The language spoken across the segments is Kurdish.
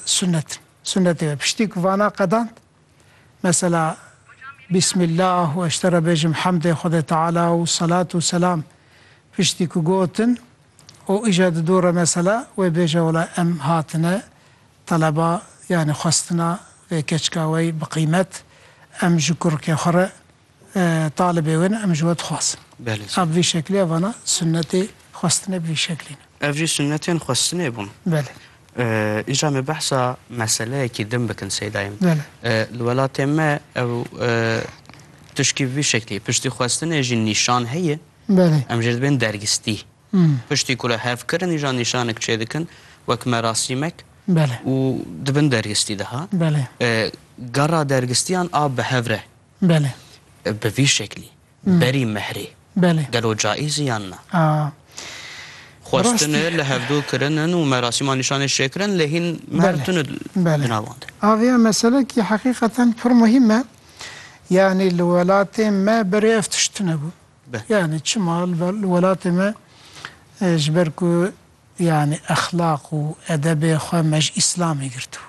Sunnet in. Sunnetê me piştî ku vana qedand, mesela Bîsmîllah û eşte re bêjim hemdê Xwedê Teala û selat û selam piştî ku gotin û îja di dû re mesela wê bêje wela em hatine teleba yanî xwestina vê keçika wey bi qîmet em ji kurikê xwe re Talibê wê ne em ji we dixwazin. Belê sey. Ev vî şeklê vana sunnetê xwestinê bi vî şeklî ne. Ev jî sunnetên xwestinê bûn. Belê. Înca em ê behsa meseleyekî din bikin Seydayim. Belê. Li welatê me ew tişkî bi vî şeklî ye. Piştî xwestinê jî nîşan heye. Belê. Em jê dibên dergistî. Piştî ku re hev kirin îja nîşanek çê dikin wek merasîmek. Belê. Û dibin dergistî de ha. Belê. Gera dergistiyan a bi hev re. Belê. Bi vî şeklî. Berî mehrê. Belê. Gelo caîz e yan na? Aa. Xwestin e li hevdû kirin in û merasîma nîşanê şêkirin lê hîn mehr tune di navan de. Belê. Avê ya meselekî heqîqeten pir muhîm e. Yanî li welatê me berê ev tişt tune bû. Yanî çima li welatê me ji ber ku yanî exlaq û edebê xwe me ji îslamê girtibû.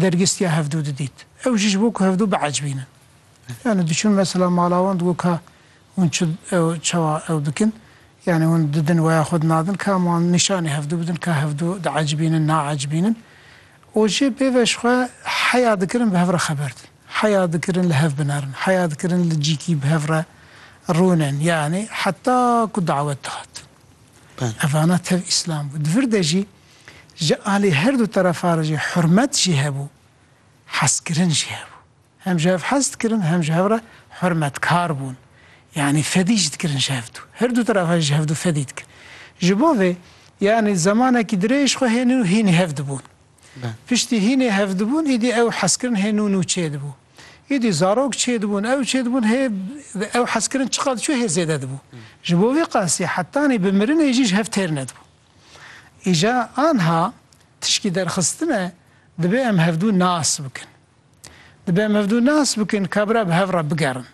Dergîstiya hevdû didît. Ew jî ji bo ku hevdû biecbînin. Yanî diçûn mesela mala wan digot ka hûn çi ew çawa ew dikin? Yanî hûn didin weya xwe dinadin ka hema wan nîşanî hevdû bidin ka hevdû diecbînin, naecbînin. Û jê pê ve ji xwe heya dikirin bi hev re xeber din. Heya dikirin li hev binerin. Heya dikirin li cîkî bi hev re rûnin. Yanî heta ku dawet dihat. Evana tev îslam bû. Di vir de jî. Ji alî her du terefa re jî hurmet jî hebû, hezkirin jî hebû. Hem ji hev hez dikirin, hem ji hev re hurmetkar bûn. Yanî fedî jî dikirin ji hev du. Her du terefa jî ji hev du fedî dikin. Ji bo vê yanî zemanekî dirêj xwe hênin û hînî hev dibûn. Piştî hînî hev dibûn îdî ew hezkirin hê nû nû çêdibû. Îdî zarok çêdibûn, ew çêdibûn hê ew hezkirin çiqas diçû hê zêde dibû. Ji bo vê qasî hetanî bi mirinê jî ji hev têr nedibûn. Îja anha tişkî derxistin e, dibe em hevdu nas bikin. Dibe em hevdu nas bikin ka bira bi hev re bigerin.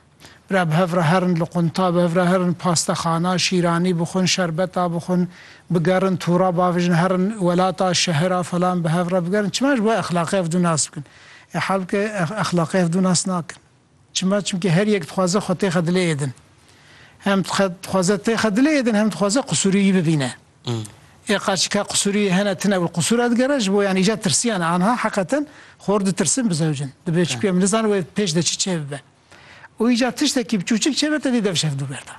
Bira bi hev re herin, li qunta bi hev re herin, pastexana, şîranî bixwin, şerbeta bixwin, bigerin tûra bavijin, herin welata, şehira falan bi hev re bigerin. Çima ji bo exlaqê hevdu nas bikin. Ê halbike exlaqê hevdu nas nakin. Çima? Çimkî her yek dixwaze xwe têxe dilê yê din. Hem dixwaze têxe dilê yê din hem dixwaze qisûrî yî bibîne. Ê qaçî ka qisûrî yî hene tune wî qisûr re digere ji bo yan îcar tirsîyane anha heqeten xor ditirsin bi zewcin. Dibe çimkî em nizanin wê pêş de çi çêbibe. Û îcar tiştekî bi çûçik çêbe tevî dev şev dû berdan.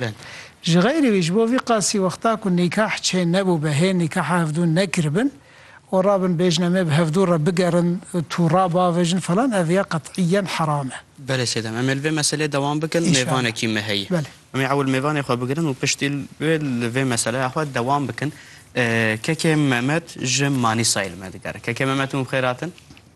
bin. Ji xeyrî wî ji bo vî qasî wexta ku nîkah çê nebû be hê nîkaha hevdûn nekiribin û rabin bêjin em ê bi hevdû re bigerin tûra bavêjin falan ev ya qet'îyen heram e. Belê sêdem em ê li vê meselê dewam bikin mêvanekî me heye. Belê. Em ê ewil mêvanê xwe bigirin û piştî wê li vê meseleya xwe dewam bikin. Kekê Memed ji Manîsayê li me digere. Kekê Memed hûn bi xêr hatin.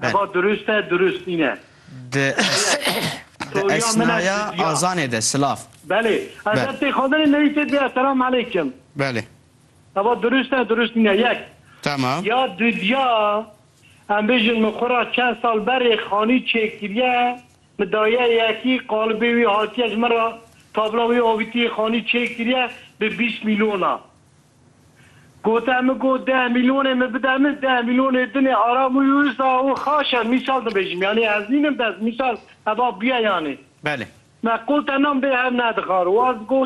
Heva durust e, durust nîne. Di esnaya azanê de silav. Belê. Ez her tê xwendinê newî tê bîya selam eleykim. Belê. Heva durust e, durust nîne. Yek. Tamam. Ya dudya em bêjin min xwe ra çend sal berê xanî çêkiriye, min daye yekî qalibê wî hatiye ji min ra tabla wî avîtiye xanî çêkiriye bi bîst mîlyon a. Gote min got deh mîlyonê min bide min deh mîlyonê din ê aram û yû îsta û xaş e mîsal dibêjim yanî ez nînim dest mîsal heba bûye yanî. Belê. Me qol te nam bê hev nedixar waz got.